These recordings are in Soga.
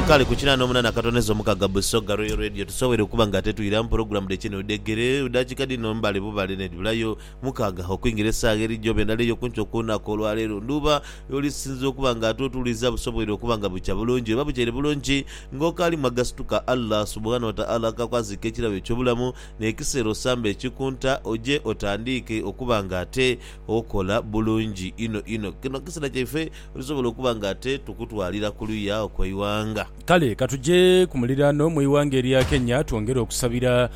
Nkali ku kinana omunana akatono ezo mukaga Busoga Royal Radio tusowere okuba nga tetwiramu pulogulamu dhe kino dhegere dakika dhino mbale bubale nedhibulayo mukaga okwingira esagha eri joba endala eyokunkyo okulunaku olwaleero ndhuuba yolisinze okuba nga ate otuliza busobwoire okuba nga bukya bulungi oba bukyaire bulungi nga okaalimu agasituka Allah Subuhana Wataala akakwaziika ekirabo ekyobulamu nekiseera osamba ekikunta oje otandiike okuba nga ate okola bulungi inho inho kino kiseera kyaife Tusobola okuba nga ate tukutwalira ku luya okw'eighanga. Kale ka tuje ku muliraano mu ighanga erya Kenya twongere okusabira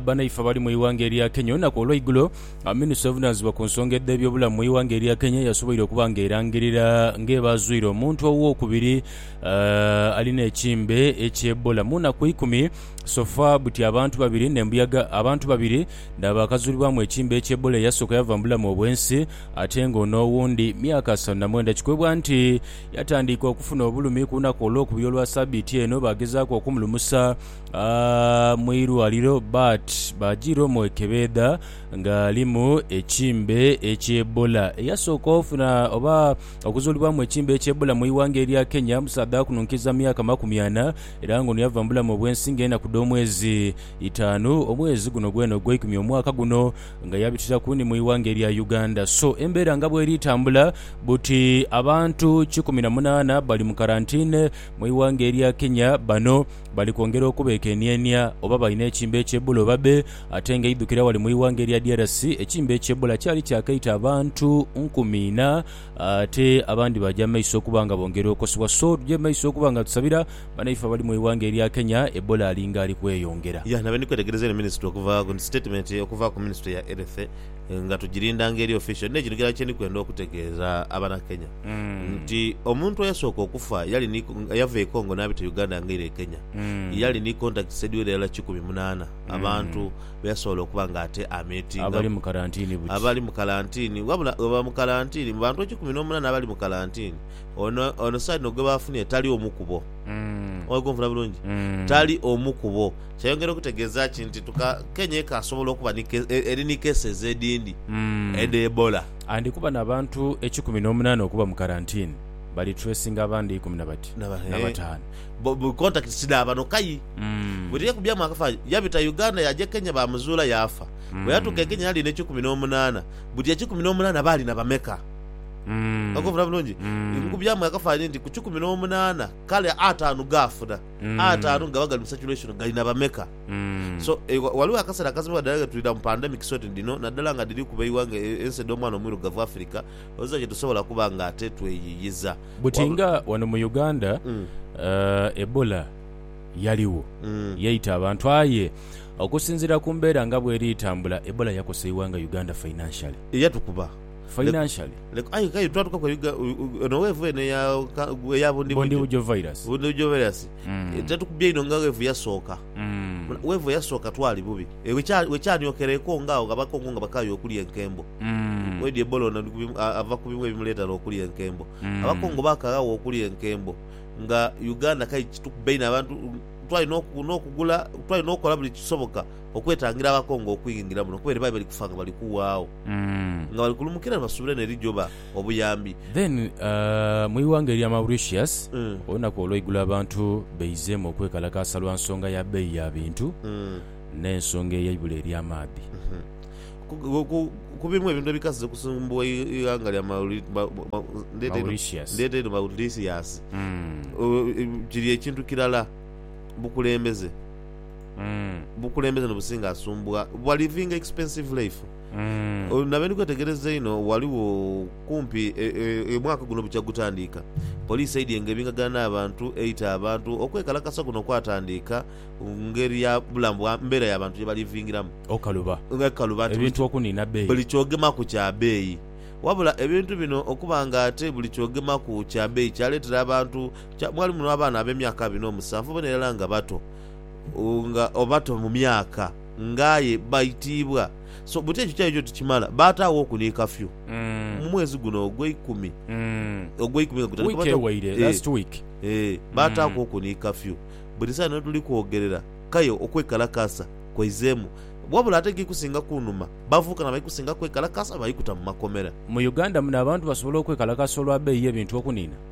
banaife abali mu ighanga erya Kenya. Olunaku olweigulo, minisita ovunaanizibwa ku nsonga edh'ebyobulamu mu ighanga erya Kenya yasoboire okuba nga erangirira nga eba azwire omuntu ow'okubiri alina ekimbe ekya Ebola mu naku ikumi sofa buti abantu babiri n'embuyaga abantu babiri Naabo akazuulibwamu ekiimba ekya Ebola eyasooka yava mu bulamu obw'ensi ate nga ono owundi myaka asanu na mwenda kikwebwa nti yatandiika okufuna obulumi ku lunaku olwokubiri olwa sabiiti eno baagezaaku okumulumusa mu irwaliro but baajiira omwekebeedha nga alimu ekiimba ekya Ebola. Eyasooka ofuna oba okuzuulibwamu ekiimba ekya Ebola mu ighanga erya Kenya musaadha wakununkiiza myaka makumi ana era nga ono yava mu bulamu obw'ensi nga enaku dh'omwezi itaanu omwezi guno gwena ogweikumi omwaka guno nga yabitiraku ni mu ighanga erya Uganda so embeera nga bweri tambula buti abantu kikumi na munaana bali mu karantine mu ighanga erya Kenya bano bali kwongera okubekenienia oba balina ekimbe ekye Ebola oba be ate nga eidhukira wali mu ighanga erya DRC ekimbe ekye Ebola kyali kyakaita abantu nkumi ina ate abandi baja mu maiso okuba nga bongera okosebwa so tuje mu maiso okuba nga tusabira Banaife abali mu ighanga erya Kenya, Ebola alinga ali kweyongera. Yah nabeni kwetegereza eno ministry okuva ku statement okuva ku ministry ya health nga tujirinda nga eri official nne kino kilala kyendi kwenda okutegeeza abana Kenya nti omuntu eyasooka okufa yali ni eyava e Congo nabita Uganda nga eira e Kenya yali ni contacts edhiwera irala kikumi munaana abantu beyasobola okuba nga ate a Abali mu meetingaku. karantini buti. Abali mu karantini wabula webaba mu karantini mu bantu ekikumi nomunaana abali mu karantini Ono ono saidi no gwe baafunire tali omu kubo. Mm. Oli kunfuna bulungi? Mm. Tali omu kubo. Kyayongera okutegeeza ki nti tuka, Kenya ekaasobola okuba ni ke- e- eri ni cases edhindi Mm. edha Ebola. Andi kuba n'abantu ekikumi n'omunaana okuba mu karantini, bali tracinga abandi ikumi na bati- Naba- na eh. bataanu. Bo- bo- Contacts ti dha bano kai. Mm. Buli eyekubyamu akafaanyi yabita Uganda yaja e Kenya baamuzuula yaafa. Bwe yatuuka e Kenya yali n'ekikumi n'omunaana. Buti ekikumi n'omunaana baali na bameka? Okumvira bulungi? Nkubyamu akafaananyi nti ku kikumi n'omunaana, kale ataanu gaafuna. Ataanu gaba gali mu saturation gali na bameka? So, ghaligho akaseera akazimibwa dhala ghe twidha mu pandemics oti dhino, naddala nga dhiri kuba eighanga, ensi edh'omwana omwirugavu Africa, oziza gye tusobola kuba nga ate tweyiiyiza. Buti nga wano mu Uganda Ebola yaligho, yaita abantu aye okusinziira ku mbeera nga bw'eri etambula, Ebola yakosa eighanga Uganda financially. Yatukuba. financially Lek, aye kale twatukaku ebiga ono weevu eno eya ka- eya bundi bujo bundibugyo virus bundi bujo virus Mm. Eh, tetukubye inho nga weevu yasooka Mm. weevu eyasooka twali bubi Eh, wekya- wekyanyookera eko nga agho abakongo nga bakaaye okulya enkembo Mm. Oidhi Ebola ono ali ku bimu- a- ava ku bimu ebimuleetera okulya enkembo Mm. abakongo bakaghagho okulya enkembo nga uganda kale kitukuba inho abantu twali n'oku- n'okugula twali n'okola buli kisoboka okwetangira abakongo okwingira muno kuba eribaire bali kufa nga bali kuwaagho nga bali kulumukira nibasuubira eno erijoba obuyambi. Then mu ighanga erya Mauritius olunaku olweigulo abantu beizeemu okwekalakaasa lwa nsonga ya beeyi ya bintu n'ensonga ey'eibula ery'amaadhi. Ku bimu ebintu ebikazize okusumbuwa eighanga lya Mauritius kiri ekintu kirala, bukulembeze. mm. Obukulembeze nobusinga asumbugha bwa living expensive life mm. Nabe ndi kwetegereza einho ghaligho kumpi e, e, e, omwaka guno bukya gutandiika poliisi eidye nga ebingagana n'abantu eita abantu okwekalakasa kuno kwatandiika ngeri ya bulamu bwa mbeera ya bantu gyebalivingiramu okaluba ekaluba nti ebintu okuniina beeyi buli kyogemaku kya beeyi Wabula ebintu bino okuba nga ate buli kyogemaku kya beeyi kyaletera abantu kya, mwalimu n'abaana ab'emyaka abiri n'omusanvu bona irala nga bato nga obato mu myaka nga aye baitiibwa so but ekyo kyali kyo tikimala baataaghoku ni kafyu mu mwezi guno ogweikumi ogweikumi nga gutandika baataaghoku ni kafyu buli saino wetuli kwogerera kaye okwekalakaasa kwaizeemu wabula ate egiri kusinga kunuma bavubuka nabali kusinga kwekalakaasa bali kuta mu makomera. Mu Uganda muno abantu basobola okwekalakaasa olwa beeyi y'ebintu okuniina?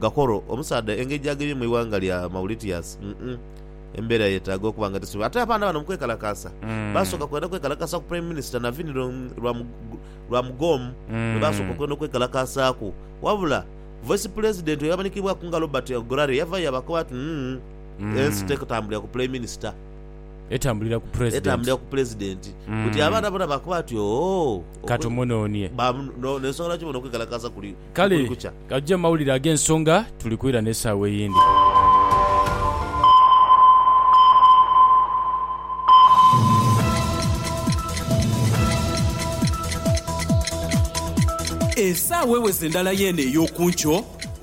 Gakoro, omusaadha engeri gy'agebyemu eighanga lya Mauritius, umm embeera yeetaaga okuba nga tesobola. Ate abaana bano mu kwekalakaasa baasooka kwenda kwekalakaasa ku Prime Minister Navin Ramgoolam gwe baasooka okwenda okwekalakaasaaku. Wabula Vice Pulezidenti eyamanhikibwaku nga Robert Ogurare yavayo yaabakoba ati, Umm ensi tetambulira ku Prime Minister. Etambulira ku Pulezidenti. Etambulira ku Pulezidenti. Buti abaana bona baakoba ati, Ooh! Ka tumunonie. N'ensonga lwaki bona okwekalakaasa kuli. Kale buli kukya. gajje mu mawulire ag'ensonga, tuli kwira n'esaawa eyindi. Esaawa eweze ndala y'eno ey'oku nkyo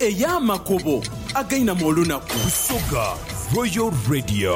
ey'amakubo againama olunaku. Busoga Royal Radio.